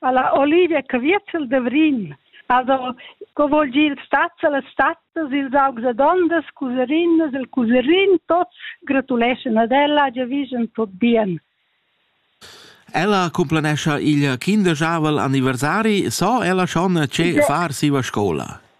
Alla Olivia Caviezel da Vrin. Also, co vuol dir il stat e las stattas, ils augs e dondas, cuserinas e cuserin, tots gratuleschan ad ella, giavischen tot bien. Ella cumplanescha il kinderjavel anniversari, so ella schon che far siva scola.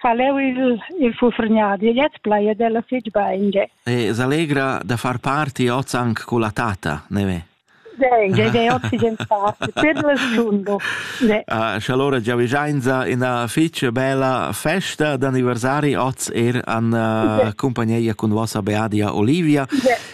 fa leu il, il fufregnadi e jetzt plaid ella fitg bein. Ge. E s'allegra da far party oz anche con la tata, ne ve? Dei, dei, dei, oggi gente parte, per il sundo. Dei. Ah, allora già vigenza una fece bella festa d'anniversari oz er an uh, compagnia con vostra beadia Olivia. Dei.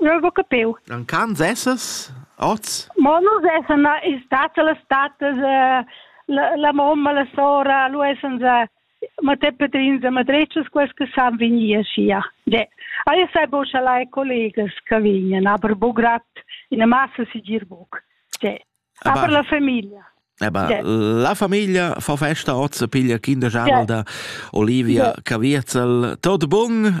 Eu ho capiu. Vacanzas essas oz? Mo nus essan stats a las statas la, la mamma, la sora, lu essan Matè Petrins a Madrecas, quels che san vegnir aschia. De. Io sai bo schalai collegas che vegnan, aber bo grad in massa sigir buc. De. Aber la famiglia. Eba, eh la famiglia fa festa oz, piglia kinder Janel da Olivia Cavierzel. Tot bun